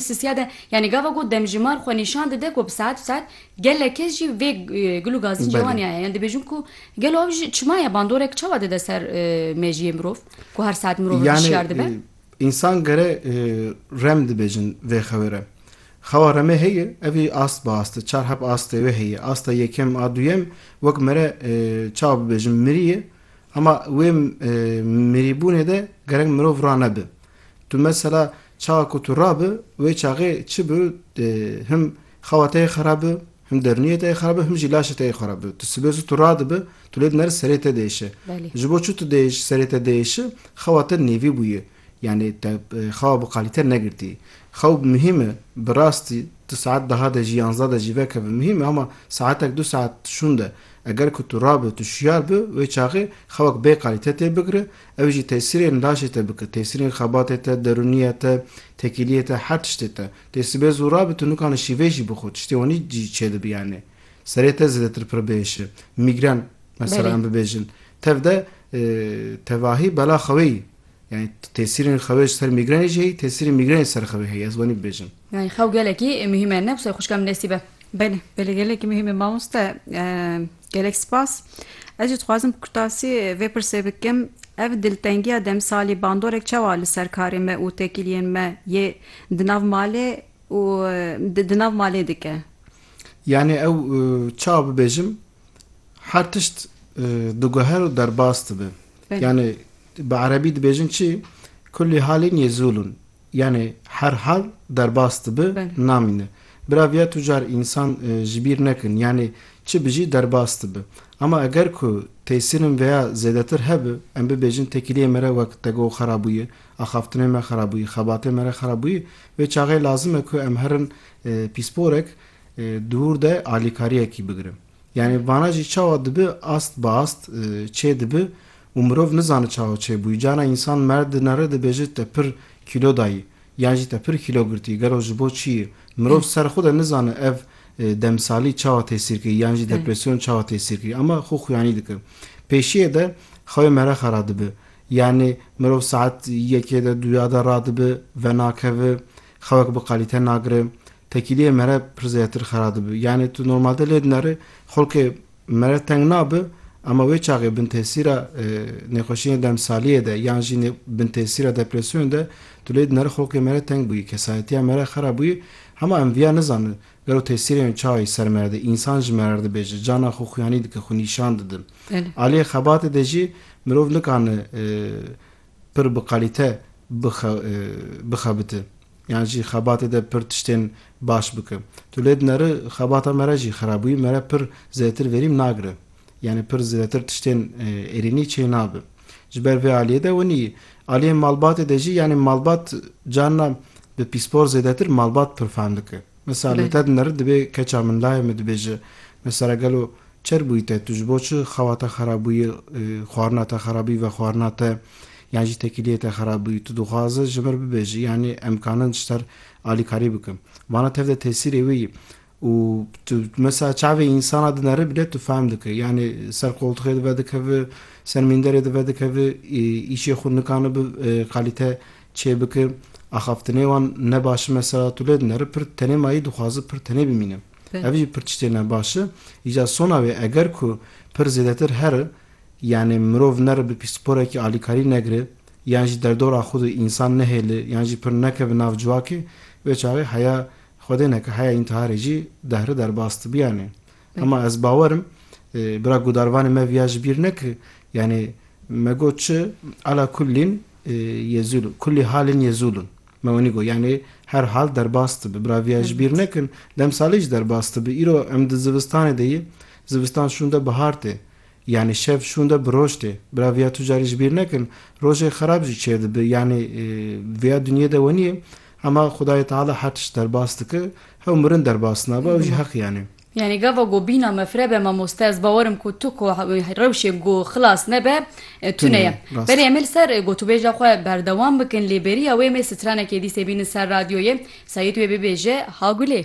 Sisiya de yanî gava ku demjimar xwe nîşan dide ku bi saet bi saet gelek kes jî vê gul û gazî cewaniya ye. Yan dibêjin ku gelo ev jî çima ye? Bandorek çawa dide ser mejiyê mirov ku her saet mirov hişyar dibe? Yanî însan gere rem dibêjin vê xewê re. Xewa remê heye, evî ast bi ast e. Çar heb astê wê heye. Asta yekem a duyem wek mere çawa bibêjim mirî ye. Hema wê mirîbûnê de gerek mirov rane bi. Tu mesela çaxa ku tu rabi wê çaxê çi bi him xewa te yê xerab bi, him derniyê te yê xerab bi, him jî laşê te yê xerab bi. Tu sibê zû tu radibi, tu lê dineri serê te diêşe. Ji bo çi tu diêş serê te diêşi, xewa te nêvî bûye. Yanî te xewa bi qalîte negirtî. Xew muhîm e bi rastî tu saet deha de jî yanzda de jî vekeve muhîm e ama saetek du saet şûnde eger ku tu rabi tu şiyar bi wê çaxê xewek bê qalîte tê bigire Ew jî tesîrên laşê te bike, tesîrên xebatê te, derûniyê te, tekîliyê te, her tiştê te. Tê sibê zû ra bi tunûkan li şîvê jî bixwe, tiştê wanî jî çêdibi yanê. Serê te zêdetir pir bihêşe. Mîgren mesela em bibêjin. Tev de tevahî bela xewê yî. Yanî tesîrên xewê ji ser mîgrenê jî heyî, tesîrên mîgrenê ji ser xewê heyî. Ez wanî bibêjim. Yanî xew gelekî muhîm e, ne wisa ye xwişka min destî be. Belê, belê gelekî muhîm e mamoste. Gelek spas. Ez jî dixwazim kurtasî vê pirsê bikim, ev diltengiya demsalî bandorek çawa li ser karê me û tekîliyên me yê di nav malê û di nav malê dike? Yanî ew çawa bibêjim her tişt diguher û derbas dibe. Yanî bi erebî dibêjin çi? Kulî halîn yezûlûn. Yanê her hal derbas dibi namîne. Bira viya tu car însan ji bîr nekin yanê çi bijî derbas dibi. Ama eger ku têsîrin veya zêdetir hebi em bibêjin tekîliyê me re wek tego û xera bûye, axaftinê me xera bûye, xebatê me re xera bûye wê çaxê lazim e ku em herin pîsporek dûr de alîkariyekî bigirin. Yanî vana jî çawa dibi ast bi ast çê dibi û mirov nizane çawa çê bûyî. Carna însan merd dinere dibêje te pir kîlo dayî yan jî te pir kîlo girtî gelo ji bo çiyê? Mirov ser xwe de nizane ev demsalî çawa tesîr kirî yan jî depresyon çawa tesîr kirî ama xwe xuyanî dike. Pêşiyê de xewê merexa radibi. Yanî mirov saet yekê de duya de radibi venakevi Xewek bi qalîte nagire. Tekîliyê mere pir zêdetir xera dibi. Yanî tu normalde lê dineri xulkê mere teng nabi ema wê çaxê bintesîra nêxweşîyên demsaliyê de yan jî bintesîra depresyonê de tu lê dineri xulkê mere teng bûyî, kesayetiya mere xera bûyî. Hema em viya nizanin gelo tesîrê wê çawa yê ser mere de. Însan ji mere re dibêje, cana xwe xuyanî dike, xwe nîşan dide. Aliyê xebatê de jî mirov nikane pir bi qalîte bixebite yan jî xebatê de pir tiştên baş bike. Tu lê dineri xebata me re jî xerab bûyî, me re pir zêdetir verîm nagire. Yanî pir zêdetir tiştên êrînî çê nabe. Ji ber vê aliyê de winî aliyên malbatê de jî yanî malbat carina bi pîspor zêdetir malbat pir fehm dike. Misa li te dinêr dibê keça min layê min dibêje, Mesela gelo çer bûyî te, tu ji bo çi xewa te xerab bûyî, xwarina te xerab bûyî, vexwarina te yan jî tekîliyê te xerab bûyî, tu dixwaze ji mir bibêjî yanî em karin ji te re alîkarî bikin. Vana tev de tesîrê wê yî û tu mesela çavê însana dinêr bile tu fehm dike yanî ser qoltixê di vedikeve, ser mînderê di vedikeve, îşê xwe nikane bi kalîte çê bike, axaftinê wan ne baş me sera tu lê dinere pir tenê mayî dixwaze pir tenê bimîne. Ev jî pir tiştê ne baş e. Îca sona wê eger ku pir zêdetir here yanê mirov nere bi pîsporekî alîkarî negire yan jî derdora xwe de însan nehêle yan jî pir nekeve nav ciwakê wê çaxê heya xwedê neke heya întiharê jî dehre derbas dibiyanê. Hema ez bawerim bira gudarvanê me viya ji bîr nekir yanê me got çi ala kullîn yezul kullî halin yezulun me wenî got yanê her hal derbas dibi bira viya ji bîr nekin demsalê jî derbas dibi îro em di zivistanê de yê zivistan şûnde bihar tê Yanî şev şûn de bi roj tê. Bila viya tu carî ji bîr nekin, rojê xerab jî çêr dibi. Yanî viya dinyê de wenî ye. Hema Xwedayê Teala her tişt derbas dike, hew mirin derbas nabe, ew jî heq yanî. Yanî gava ku bîna me firebe mamoste, ez bawer im ku tu ku rewşê ku xilas nebe, tune ye. Belê em ê li ser gotûbêja xwe berdewam bikin, lê bêriya wê em ê stranekê dîsê bînin ser radyoyê, Seîd wê bibêje, Ha Gulê!